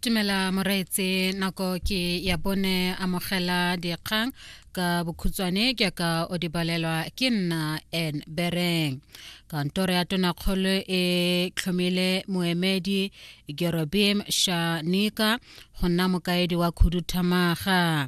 tumela moreetse nako ke ya bone amogela dikgang ka bokhutswane ke ka o di balelwa ke nna en bereng kantoro ya tonakgolo e tlhomile moemedi gerobim shanika go nna mokaedi wa khuduthamaga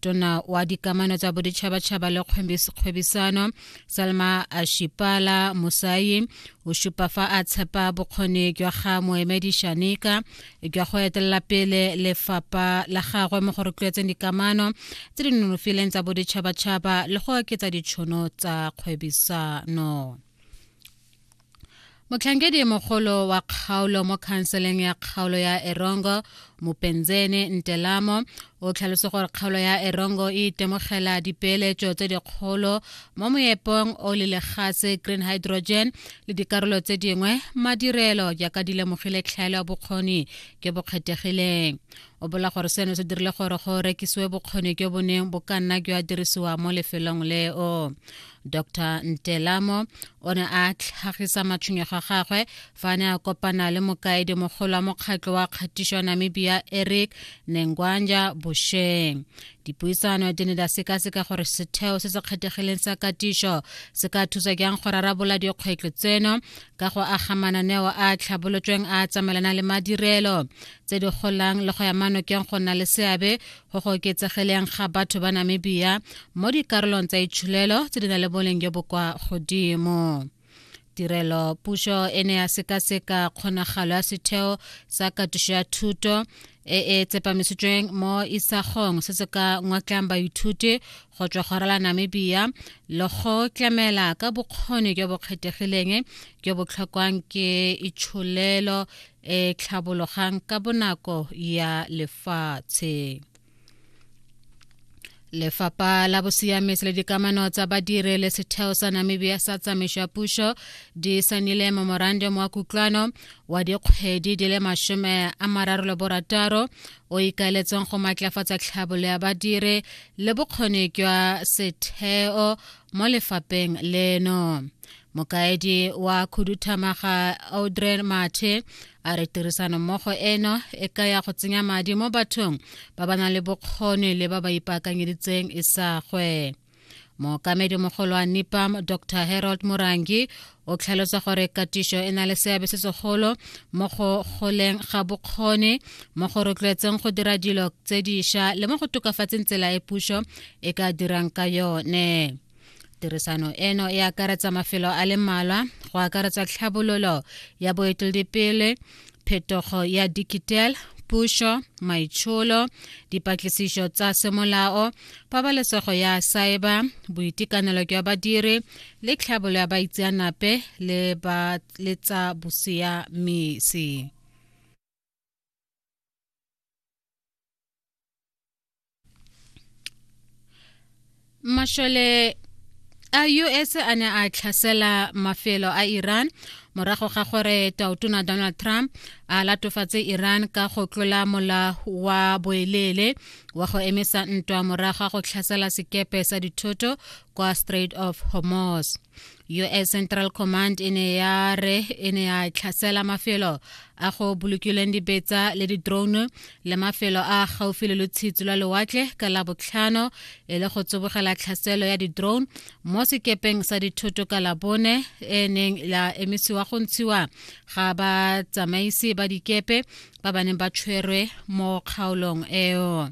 tona wa dikamano tsa boditšhabatšhaba le kgwebisano salma ashipala musayi o šupa fa a tshepa bokgoni jwa ga moemedi shanika jwa go etelela pele lefapha la gagwe mo go rotloetseng dikamano tse di nonofileng tsa boditšhabatšhaba le go oketsa ditšhono tsa kgwebisano motlhankedi mogolo wa kgaolo mo khanseleng ya kgaolo ya erongo mopenzene ntelamo o tlhalose gore kgaolo ya erongo e itemogela dipeeletso tse dikgolo mo moepong o le legatse green hydrogen le dikarolo tse dingwe madirelo jaaka di lemogile tlhaelo ya bokgoni ke bo kgethegileng o bola gore seno se dirile gore go rekisiwe bokgoni jo bo neng bo ka nna jwa dirisiwa mo lefelong leo dr ntelamo o ne a tlhagisa matshwenyego a gagwe fa a ne a kopana le mokaedi mogolo wa mokgatlho wa kgatišo ya namibia eric nengwanja bosheng dipuisano di ne di sekaseka gore setheo se se kgethegileng sa katišo se ka thusa jang go rarabola dikgwetlho tseno ka go aga mananeo a tlhabolotsweng a tsamaelana le madirelo tse di golang le go ya manokeng go nna le seabe go go oketsegeleng ga batho ba namibia mo dikarolong tsa itsholelo tse di na le boleng jo bo kwa godimo tirelo puso e ne ya sekaseka kgonagalo ya setheo sa katiso ya thuto e e tsepamisitsweng mo isagong se se ka ngwatlang baithuti go tswa go rala namibia le go tlamela ka bokgoni jo bo kgethegileng jo bo tlhokwang ke itsholelo e tlhabologang ka bonako ya lefatshe lefapha la bosiamisi le dikamano tsa badiri le setheo sa namibia sa tsamaiso ya puso di sanile memorandum wa kutlwano wa dikgwedi di le masome a mararo le borataro o ikaeletseng go maatlafatsa tlhabolo ya badiri le bokgoni jwa setheo mo lefapheng leno mokaedi wa khuduthamaga audre mathe a re tirisanommogo eno e ka ya go tsenya madi mo bathong ba ba nang le bokgoni le ba ba ipaakanyeditseng e sa gwe mookamedi mogolo wa nipam dr harold morangi o tlhalosa gore katišo e na le seabe se segolo mo go goleng ga bokgoni mo go rotloetseng go dira dilo tse diša le mo go tokafatseng tsela e puso e ka dirang ka yone tirisano eno e akaretsa mafelo a le mmalwa go akaretsa tlhabololo ya boeteledipele phetogo ya digital pušo maitsholo dipatlisišo tsa semolao pabalesego ya saeba boitekanelo jwa badiri le tlhabolo ya baitseanape le tsa bosiamisi mashole a us a ne a tlhasela mafelo a iran morago ga gore tautona donald trump a latofatse iran ka go tlola mola wa boeleele wa go emisa ntwa morago ga go tlhasela sekepe sa dithoto kwa strait of hormuz us central command e ne ya re e ne ya tlhasela mafelo a go bolokilweng dibetsa le di-drone le mafelo a gaufi le lotshitsi lwa lewatle ka la botlhano e le go tsibogela tlhaselo ya di-drone mo sekepeng sa dithoto ka labone e neng la emisiwa go ntshiwa ga batsamaisi ba dikepe ba ba neng ba tshwerwe mo kgaolong eo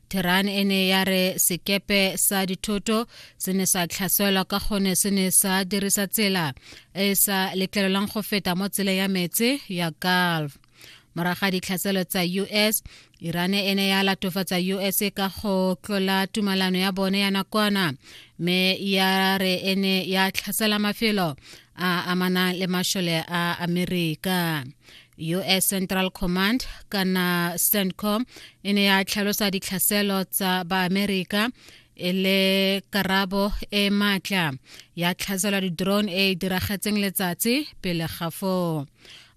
theran e ne ya re sekepe sa dithoto se ne sa tlhaselwa ka gone se ne sa dirisa tsela e e sa letlelelwang go feta mo tseleng ya metse ya gulf moraga ditlhaselo tsa us iran e ne ya latofatsa us ka go tlola tumalano ya bone ya nakwana mme ya re e ne ya tlhasela mafelo a amanang le mashole a amerika us central command kana centcom e ne ya tlhalosa ditlhaselo tsa baamerika e le karabo e maatla ya tlhasela di-drone e e diragetseng letsatsi pele ga foo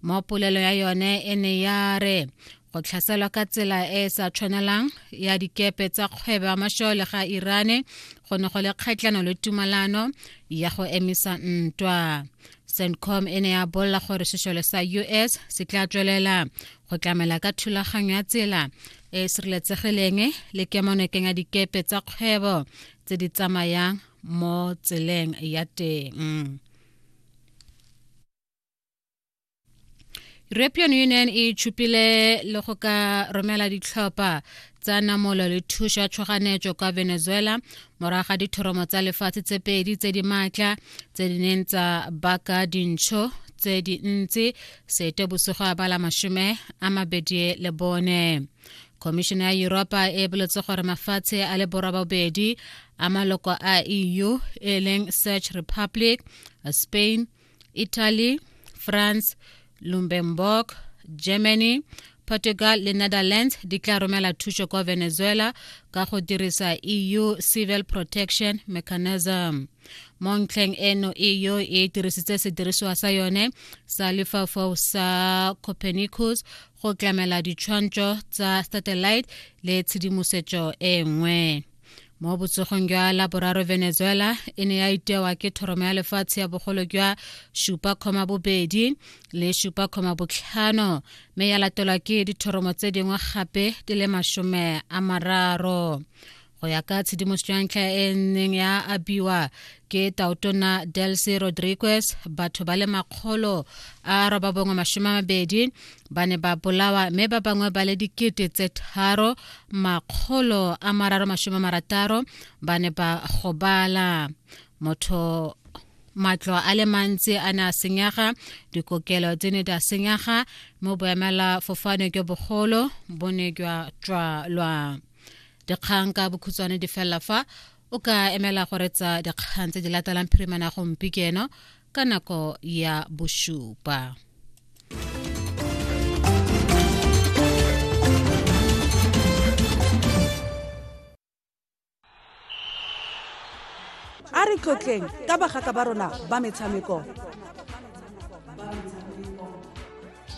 mo polelo ya yone e ne ya re go tlhaselwa ka tsela e e sa tshwanelang ya dikepe tsa kgwebo ya mashole ga irane go ne go le kgatlhano le tumalano ya go emisa ntwa centcom e ne ya bolela gore sešole sa us se tla tswelela go tlamela ka thulaganyo ya tsela e e sireletsegileng le kemonokeng ya dikepe tsa kgwebo tse di tsamayang mo tseleng ya teng european union e tšhupile le go ka romela ditlhopha tsa namolo le thušo ya tšhoganetšo kwa venezuela morago ga dithoromo tsa lefatshe tse pedi tse di maatla tse di neng tsa baka dintšho tse dintsi sete bosigo ya bala mashome a mabedi le bone khomišene ya europa e boletse gore mafatshe a le borwa bobedi a maloko a eu e leng search republic spain italy france luxembourg germany portugal le netherlands di tla romela thuso kwa venezuela ka go dirisa eu civil protection mechanism mo ntlheng eno eu e dirisitse sedirisiwa sa yone sa lefaufau sa copernicus go tlamela ditshwantsho tsa satellite le tshedimosetso e nngwe mo botsogong jwa laboraro venezuela e ne ya itewa ke thoromo ya lefatshe ya bogolo jwa supa kgoma bobedi le supa kgoma botlhano mme ya latelwa ke dithoromo tse dingwe gape di le masome a mararo go ya ka tshedimoso ya ntlha e neng ya abiwa ke taotona delcy rodriguez batho ba le makgolo a roba bongwe masome a mabedi ba ne ba bolawa mme ba bangwe ba le dikete tse tharo makgolo a mararo masome marataro ba ne ba gobala motho matlo a le mantsi a ne a senyega dikokelo tse ne di a senyega mo boemela fofane jwa bogolo bo ne jwa tswalwa dikgang ka bokhutshwane di felela fa o ka emela go retsa dikgang tse di latelang phirimana gompi keno ka nako ya bosupa a re tlotleng ka bagaka ba rona ba metshameko